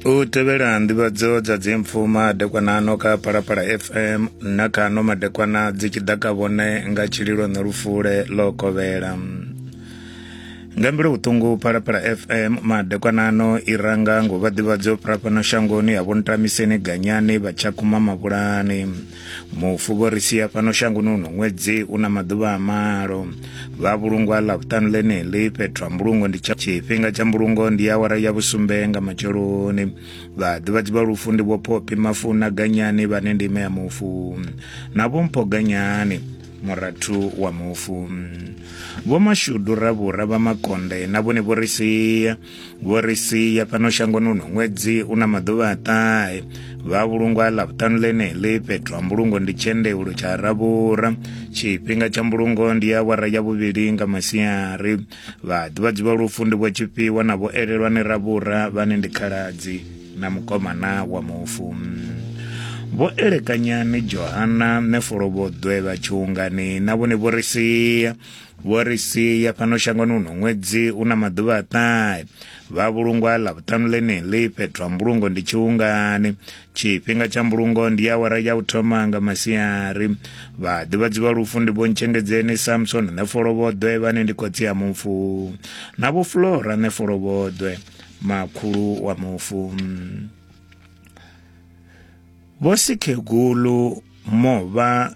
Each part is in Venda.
u tevhela nḓivhadzo dza dzimpfu madekwanano kha phalaphala fm na kha no madekwana dzi tshi ḓa ka vhone nga tshililo na lufule ḽo kovhela nga mbilu vhuṱungu phalaphala fm madekwanano i ranga ngo vha ḓivhadzo phalapano shangoni ya vhontamiseni ganyani vha tshakhuma mavhulani mufu vho ri sia fhano shangoni uno ṅwedzi u na maḓuvha a malo vha vhulungwa ḽa vhuṱanu ḽeneḽi fhethu ha mbulungo ndi tsha tshifhinga tsha mbulungo ndi awara ya vhusumbe nga matsheloni vhaḓivhadzi vha lufu ndi vho phophi mafu na ganyani vhane ndi ime ya mufu na vho mpho ganyani murathu wa mufu vho mashudu ravhura vha makonde na vhone vho ri sia vho ri sia fhano shangoni uno ṅwedzi u na maḓuvha a ṱahe vha vhulungwa ḽa vhuṱanu ḽeneḽi fhethu ha mbulungo ndi tshendeulo tsha ravhura tshifhinga tsha mbulungo ndi ya awara ya vhuvhili nga masiari vhaḓivhadzi vha lufu ndi vho tshifhiwa na vho elelwa ni ravhura vhane ndi khaladzi na mukomana wa mufu vho elekanyani johana nefolo vho ḓwe vha tshungani na vhone vho ri sia vho ri sia fhano shangoni uno ṅwedzi u na maḓuvha a ṱahe vha vhulungwa ḽa vhuṱanu ḽeneḽi fhethu ha mbulungo ndi tshiungani tshifhinga tsha mbulungo ndi awara ya u thoma nga masiari vha ḓivhadzi vha lufu ndi vho ntshengedzeni samson nṋe folovhoḓwe vhane ndi khotsi ya mufu na vho flora nṋe folovhoḓwe makhulu wa mufu vho sikhegulu movha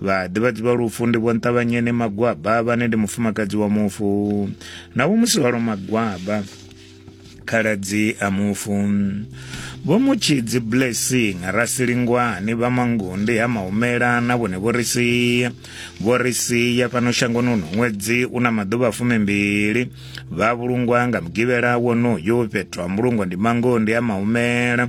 vhaḓivhadzi vha lufu ndi vho nṱavhanyeni magwaba vhane ndi mufumakadzi wa mufu na vho musi hwalo magwaba khaladzi a mufu vho mutshidzi blessing rasilingwani vha mangundi ha mahumela na vhone vho ri sia vho ri sia fhano shangoni uno ṅwedzi u na maḓuvha fumimbili vha vhulungwa nga mugivhela wonoyo fhethu ha mbulungo ndi mangondi ha mahumela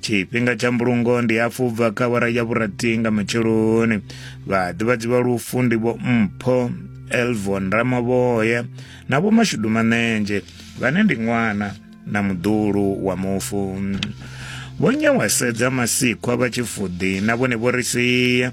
tshifhinga tsha mbulungo ndi hafhu bva kha wara ya vhurathi nga matsheloni vhaḓivhadzi vha lufu ndi vho mpho elvon ramavhoya na vho mashudu manenzhe vhane ndi ṅwana na muḓulu wa mufu vho nyawasedza masikhwa vha tshifuḓi na vhone vho ri sia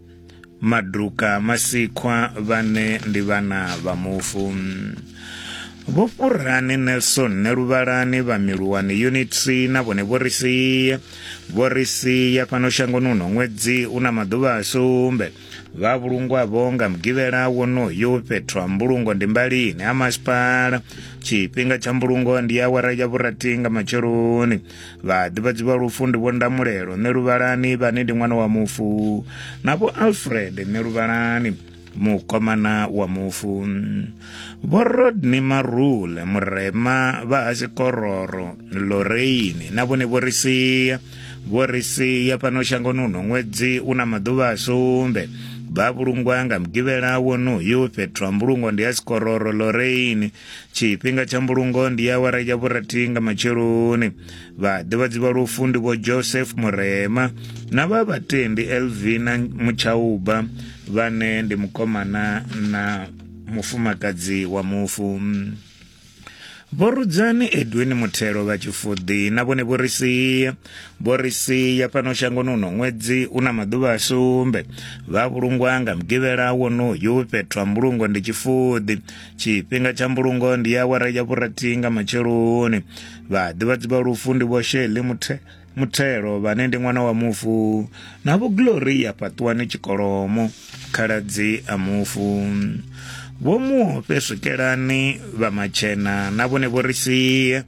maduka masikhwa vhane ndi vhana vha mufu vho fhurani nelson neluvhalani vha miluwani unit c na vhone vho ri sia vho ri sia fhano shangoni uno ṅwedzi u na maḓuvha a sumbe vha vhulungwavho nga mugivhela wonoyu fhethu ha mbulungo ndi mbalini ha masipala tshifhinga tsha mbulungo ndi awara ya vhurathi nga matsheloni vhaḓivhadzi vha lufu ndi vho ndamulelo nṋe luvhalani vhane ndi ṅwana wa mufu na vho alfred nṋe luvhalani mukomana wa mufu vho rodney marule murema vha hasikororo loreini na vhone vho ri sia vho ri sia fhano shangoni uno ṅwedzi u na maḓuvha a sumbe vha vhulungwa nga mugivhela wonoyu fhethu ha mbulungo ndi ya sikororo loreini tshifhinga tsha mbulungo ndi awara ya vhurathi nga matsheloni vhaḓivhadzi vha lufu ndi vho joseph murema na vha vhatendi elvina mutshauba vhane ndi mukomana na mufumakadzi wa mufu vhorudzani edwin muthelo vha tshifuḓi na vhone vho ri sia vho ri sia fhano shangoni uno ṅwedzi u na maḓuvha a sumbe vha vhulungwa nga mugivhela wonoyu fhethu ha mbulungo ndi tshifuḓi tshifhinga tsha mbulungo ndi awara ya vhurathi nga matsheloni vhaḓivhadzi vha lufu ndi vho sheli muthe muthelo vhane ndi ṅwana wa mufu na vho gloria fhaṱuwani tshikolomo khaladzi a mufu vho muofhe swikelani vha matshena na vhone vho ri sie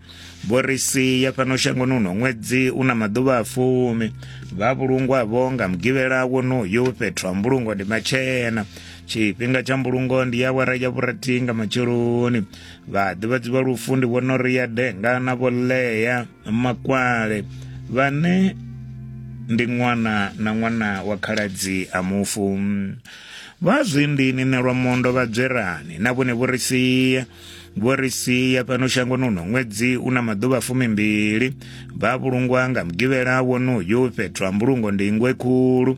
vho ri sie fhano shangoni uno ṅwedzi u na maḓuvha a fumi vha vhulungwavho nga mugivhela wonoyo fhethu ha mbulungo ndi matshena tshifhinga tsha mbulungo ndi ya awara ya vhurathi nga matsheloni vhaḓivhadzi vha lufu ndi vhona uri ya denga na vholea makwale vhane ndi ṅwana na ṅwana wa khaladzi a mufu vha zwindini nelwa mondo vha dzwerani na vhone vho ri sia vho ri sia fhano shangoni uno ṅwedzi u na maḓuvha fumimbili vha vhulungwa nga mugivhela wonoyu fhethu ha mbulungo ndi ingwe khulu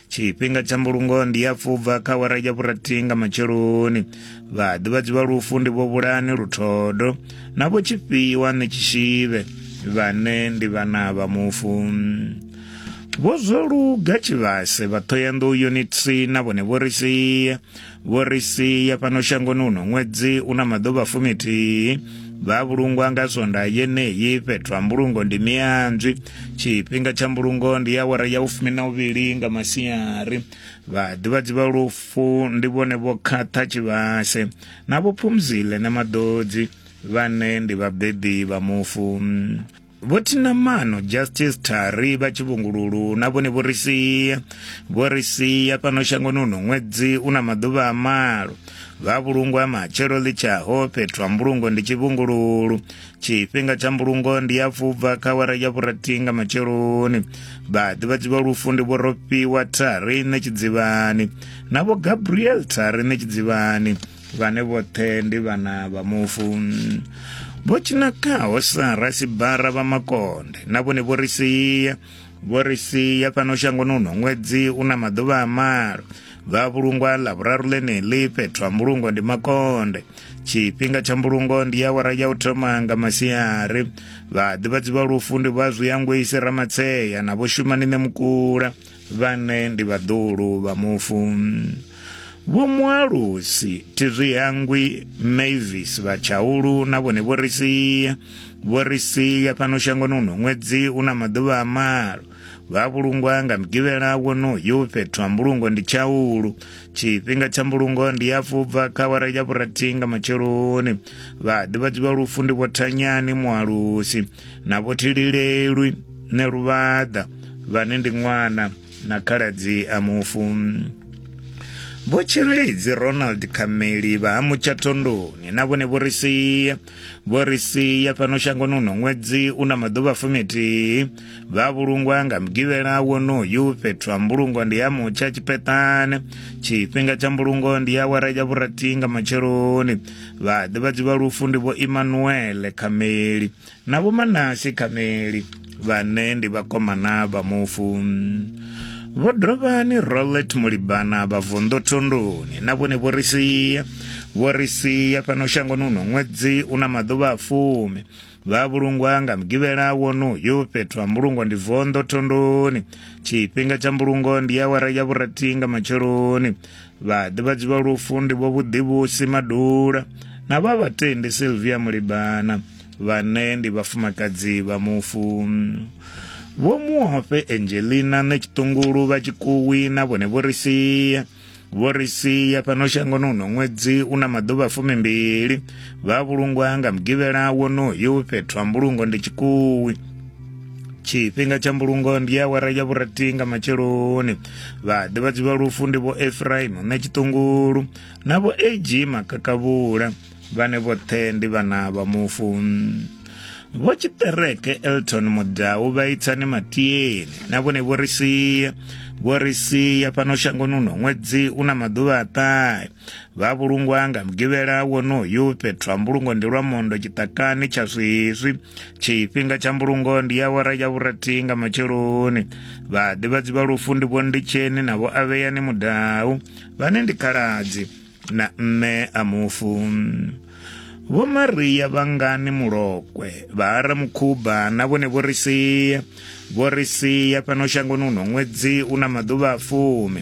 tshifhinga tsha mbulungo ndi ya pfubva kha wara ya vhurathi nga matsheloni vhaḓivhadzi vha lufu ndi vho vhulani luthodo na vho tshifhiwa ni tshishivhe vhane ndi vhana vha mufu vho zwo luga tshivhase vha thoyandou yunitsi na vhone vho ri sia vho ri sia fhano shangoni uno ṅwedzi u na maḓuvha fumithihi vha vhulungwa nga sonda yeneyi fhethu ha mbulungo ndi mianzwi tshifhinga tsha mbulungo ndi ya awara ya ufumi na uvhili nga masiari vhaḓivhadzi vha lufu ndi vhone vho khaṱha tshivhase na vho phumzile na maḓodzi vhane ndi vhabebi vha mufu Vho Thinamano Justice Thari vha Tshivhungululu na vhone vho ri sia vho ri sia fhano shangoni uno ṅwedzi u na maḓuvha a malo vha vhulungo ha matshelo ḽi tshaho fhethu ha mbulungo ndi tshivhungululu tshifhinga tsha mbulungo ndi ya fubva kha wara ya vhurathi nga matsheloni vhaḓivhadzi vha lufu ndi vho rofhiwa thari nṋe tshidzivhani na vho gabriel thari nṋe tshidzivhani vhane vhoṱhe ndi vhana vha mufu vho tshinakaho sa rasibara vha makonde na vhone vho ri sia vho ri sia fhano shangoni uno ṅwedzi u na maḓuvha a malo vha vhulungwa ḽa vhuraru ḽeneḽi fhethu ha mbulungo ndi makonde tshifhinga tsha mbulungo ndi awara ya u thoma nga masiari vhaḓivhadzi vha lufu ndi vha zwiyangwisi ramatseya na vho shumani ṋe mukula vhane ndi vhaḓulu vha mufu vho mualusi tizwi hangwi mavis vha tshaulu na vhone vho ri sia vho ri sia fhano shangoni uno ṅwedzi u na maḓuvha a malo vha vhulungwa nga mugivhela wonoyu fhethu ha mbulungo ndi tshaulu tshifhinga tsha mbulungo ndi ya fubva kha wara ya vhurathi nga matsheloni vhaḓivhadzi vha lufu ndi vho thanyani mualusi na vhothililelwi ne luvhaḓa vhane ndi ṅwana na khaladzi a mufu vho tshireledzi ronald khameli vha ha mutshathondoni na vhone vho ri sia vho ri sia fhano shangoni uno ṅwedzi u na maḓuvha fumithihi vha vhulungwa nga mugivhela wonoyu fhethu ha mbulungo ndi ya mutsha tshipheṱane tshifhinga tsha mbulungo ndi ya wara ya vhurathi nga matsheloni vhaḓivhadzi vha lufu ndi vho imanuele khameli na vho manasi khameli vhane ndi vhakomana vha mufu vho dovhani rolet mulibana vha vunḓu thunduni na vhone vho ri sia vho ri sia fhano shangoni uno ṅwedzi u na maḓuvha a fumi vha vhulungwa nga mugivhela wonoyu fhethu ha mbulungo ndi vonḓo thondoni tshifhinga tsha mbulungo ndi awara ya vhurathi nga matsheloni vhaḓivhadzi vha lufu ndi vho vhuḓivhusi madula na vha vhatendi silvia mulibana vhane ndi vhafumakadzi vha mufu vho muofe angelina ṋe tshiṱungulu vha tshikuwi na vhone vho ri sia vho ri sia fhano shangoni uno ṅwedzi u na maḓuvha fumimbili vha vhulungwa nga mugivhela wonoyu fhethu ha mbulungo ndi tshikuwi tshifhinga tsha mbulungo ndi awara ya vhurati nga matsheloni vhaḓivhadzi vha lufu ndi vho efraim na tshiṱungulu na vho ag makakavhula vhane vhoṱhe ndi vhana vha mufu vho tshiṱereke elton mudau vha itsani matieni na vhone vho ri sia vho ri sia fhano shangoni uno ṅwedzi u na maḓuvha a ṱahe vha vhulungwa nga mugivhela wonoyu fhethu ha mbulungo ndi lwa mondo tshiṱakani tsha zwiswi tshifhinga tsha mbulungo ndi ya wara ya vhurathi nga matsheloni vhaḓivhadzi vha lufu ndi vho nditsheni na vho avheyani mudau vhane ndi khaladzi na mme a mufu vho maria vhangani mulokwe vha ara mukhuba na vhone vho ri sia vho ri sia fhano shangoni uno ṅwedzi u na maḓuvha a fumi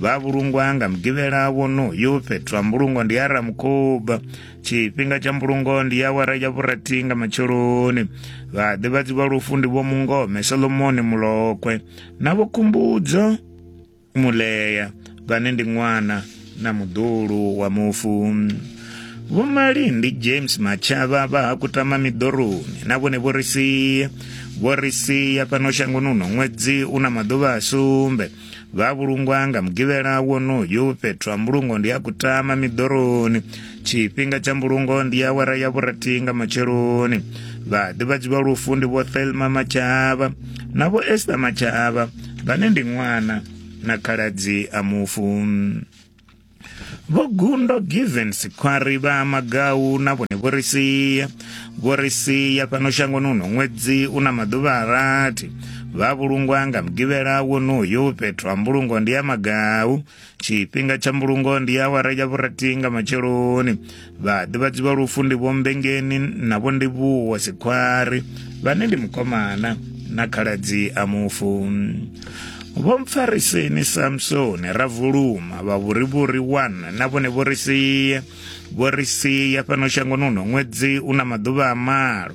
vha vhulungwa nga mugivhela wonoyu fhethu ha mbulungo ndi ara mukhuba tshifhinga tsha mbulungo ndi ya wara ya vhurathi nga matsheloni vhaḓivhadzi vha lufu ndi vho mungome solomoni mulokwe na vho khumbudzo Mulea vhane ndi ṅwana na muḓulu wa mufu Vho Malindi James Matshava vha ha kutama miḓoroni na vhone vho ri sia vho ri sia fhano shangoni uno ṅwedzi u na maḓuvha a sumbe vha vhulungwa nga mugivhela wonoyu fhethu ha mbulungo ndi ha kutama miḓoroni tshifhinga tsha mbulungo ndi awara ya vhurathi nga matsheloni vhaḓivhadzi vha lufu ndi vho thelma matshavha na vho esta matshavha vhane ndi ṅwana na khaladzi a mufu vho gundo given sikhwari vha magau na vhone vho ri sia vho ri sia fhano shangoni uno ṅwedzi u na maḓuvha a rathi vha vhulungwa nga mugivhela wonoyo fhethu ha mbulungo ndi ya magau tshifhinga tsha mbulungo ndi awara ya vhurathi nga matsheloni vhaḓivhadzi vha lufu ndi vhombengeni na vho ndi vhuwa sikhwari vhane ndi mukomana na khaladzi a mufu vho mpfariseni samsoni ra vuluma vha vhuri vhuri wana na vhone vho ri sia vho ri sia fhano shangoni uno ṅwedzi u na maḓuvha a malo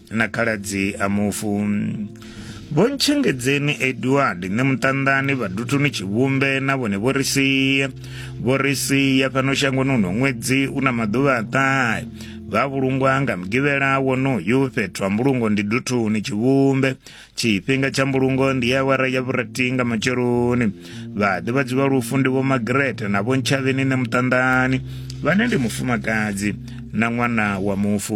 na khaladzi a mufu vho ntshengedzeni edward nṋe muṱanḓani vhadutuni tshivhumbe na vhone vho ri sia vho ri sia fhano shangoni uno ṅwedzi u na maḓuvha a ṱahe vha vhulungwa nga mugivhela wonoyu fhethu ha mbulungo ndi duthuni tshivhumbe tshifhinga tsha mbulungo ndi awara ya vhurati nga matsheloni vhaḓivhadzi vha lufu ndi vho magrete na vho ntshavheni ne muṱanḓani vhane ndi mufumakadzi na ṅwana wa mufu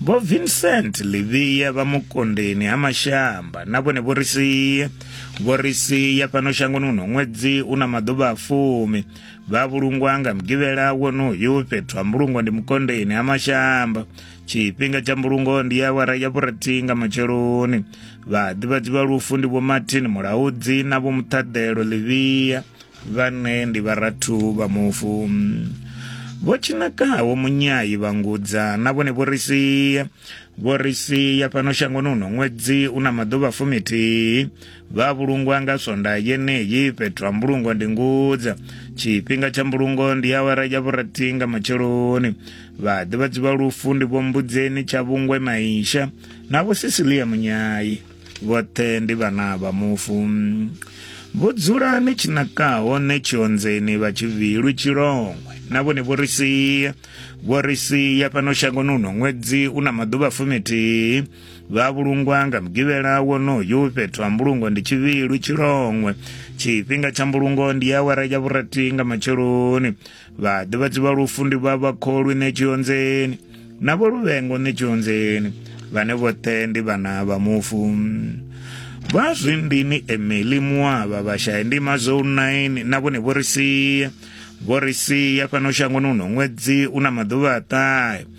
Vho Vincent Livhiya vha Mukondeni ha Mashamba na vhone vho ri sia vho ri sia fhano shangoni huno ṅwedzi u na maḓuvha a fumi vha vhulungwa nga mugivhela wonoyu fhethu ha mbulungo ndi Mukondeni ha Mashamba tshifhinga tsha mbulungo ndi ya awara ya vhurathi nga matsheloni vhaḓivhadzi vha lufu ndi vho Martin Mulaudzi na vho Muṱhaḓelo Livhiya vhane ndi vharathu vha mufu vho tshinakaho munyayi vha ngudza na vhone vho ri sia vho ri sia fhano shangoni uno ṅwedzi u na maḓuvha fumithihi vha vhulungwa nga swonda yeneyi fhethu ha mbulungo ndi ngudza tshifhinga tsha mbulungo ndi awara ya vhurathi nga matsheloni vhaḓivhadzi vha lufu ndi vho mbudzeni tsha vhungwe maisha na vho sisilia munyayi vhoṱhe ndi vhana vha mufu vho dzula ni tshi naka hone tshionzeni vha tshi vilwi tshilongwe na vhone vho ri sia vho ri sia fhano shangoni uno ṅwedzi u na maḓuvha fumithihi vha vhulungwa nga mugivhela wonoyu fhethu ha mbulungo ndi tshivhilu tshilongwe tshifhinga tsha mbulungo ndi awara ya vhurathi nga matsheloni vhaḓivhadzi vha lufu ndi vha vhakholwi ṋetshionzeni na vho luvhengo ṋetshionzeni vhane vhoṱhe ndi vhana vha mufu vha zwindini emeli muavha vhashaya ndima zwo 9 na vhone vho ri sia vho ri sia fhano shangoni uno ṅwedzi u na maḓuvha a ṱahe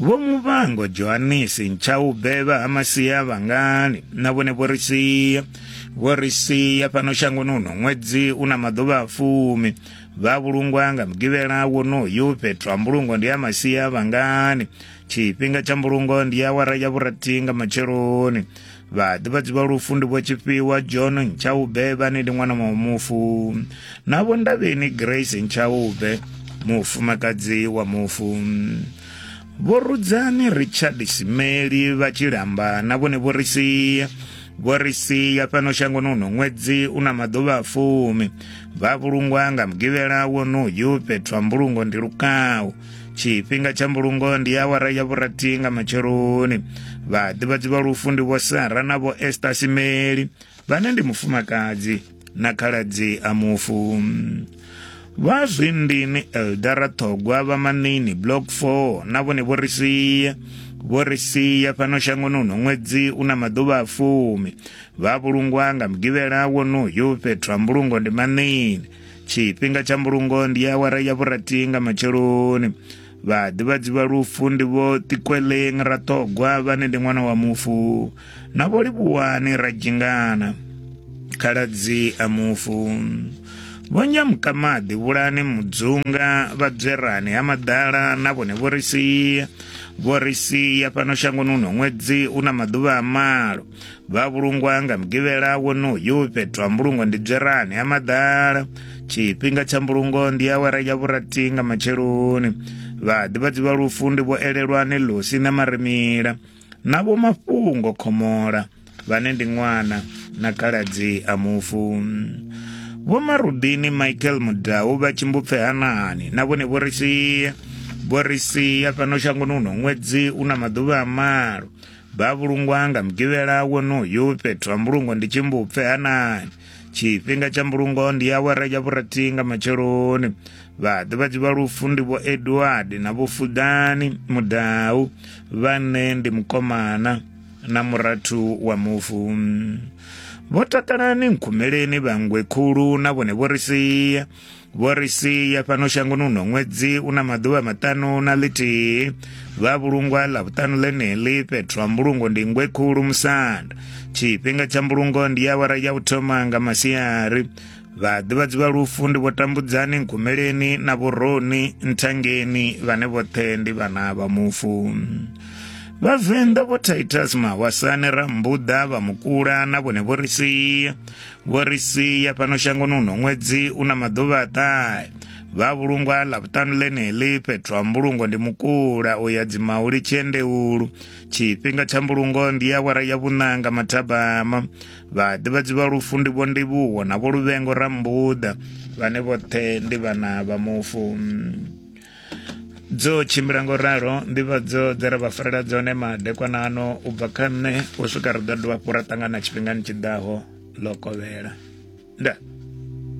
Vho Muvhango Johanisi Ntshaube vha ha Masia Vhangani na vhone vho ri sia vho ri sia fhano shangoni uno ṅwedzi u na maḓuvha a fumi vha vhulungwa nga mugivhela wonoyu fhethu ha mbulungo ndi ya Masia Vhangani tshifhinga tsha mbulungo ndi awara ya vhurathi nga matsheloni vhaḓivhadzi vha lufu ndi vho tshifhiwa john ntshaube vhane ndi ṅwana wa mufu na vho ndavheni grace ntshaube mufumakadzi wa mufu vho rudzani richard simeli vha tshilamba na vhone vho ri sia vho ri sia fhano shangoni uno ṅwedzi u na maḓuvha a fumi vha vhulungwa nga mugivhela wonoyu fhethu ha mbulungo ndi lukawu tshifhinga tsha mbulungo ndi awara ya vhurathi nga matsheloni vhaḓivhadzi vha lufu ndi vho sara na vho ester simeli vhane ndi mufumakadzi na khaladzi a mufu vha zwindini eldara ṱhogwa vha manini block 4 na vhone vho ri sia vho ri sia fhano shangoni uno ṅwedzi u na maḓuvha a fumi vha vhulungwa nga mugivhela wonoyu fhethu ha mbulungo ndi manini tshifhinga tsha mbulungo ndi awara ya vhurathi nga matsheloni vhaḓivhadzi vha lufu ndi vho ṱikweleng raṱhogwa vhane ndi ṅwana wa mufu na vho livhuwani radzhingana khaladzi a mufu vho nyamukamaḓi vhulani mudzunga vhadzwerani ha maḓala na vhone vho ri sia vho ri sia fhano shangoni uno ṅwedzi u na maḓuvha a malo vha vhulungwa nga mugivhela wonoyu fhethu ha mbulungo ndi dzwerani ha maḓala tshifhinga tsha mbulungo ndi awara ya vhurati nga matsheloni vhaḓivhadzi vha lufu ndi vho elelwani lusi na marimila na vho mafhungo khomola vhane ndi ṅwana na kaladzi a mufu vho marudini michael mudau vha tshimbupfe hanani na vhone vho ri sia vho ri sia fhano shangoni uno ṅwedzi u na maḓuvha a malo Vha vhulungwa nga mugivhela wonoyu fhethu ha mbulungo ndi tshimbupfe hanani tshifhinga tsha mbulungo ndi awara ya vhurathi nga matsheloni vhaḓivhadzi vha lufu ndi vho edward na vho fudani mudau vhane ndi mukomana na murathu wa mufu vho takalani nkhumeleni vhangwe khulu na vhone vho ri sia vho ri sia fhano shangoni uno ṅwedzi u na maḓuvha maṱanu na ḽithihi vha vhulungwa ḽa vhuṱanu ḽeneḽi fhethu ha mbulungo ndi ngwe khulu musanda tshifhinga tsha mbulungo ndi ya awara ya u thoma nga masiari vhaḓivhadzi vha lufu ndi vho tambudzani nkumeleni na vhoroni nthangeni vhane vhoṱhe ndi vhana vha mufu vhavenḓa vho titus mahwasane rambuḓa vha mukula na vhone vho ri sia Vho ri sia fhano shangoni uno ṅwedzi u na maḓuvha a ṱahe vha vhulungwa ḽavhuṱanu ḽeneḽi fhethu ha mbulungo ndi mukula u ya dzimauli tshiendeulu tshifhinga tsha mbulungo ndi ya wara ya vhuṋanga mathabama vhaḓivhadzi vha lufu ndi vho ndivhuwo na vho luvhengo rambuḓa vhane vhoṱhe ndi vhana vha mufu dzo tshimbila ngo ralo nḓivhadzo dze ra vha farela dzone madekwana ano u bva kha nṋe u swika ri ḓo dovha hafhu ra ṱangana tshifhingani tshi ḓaho ḽo kovhela nda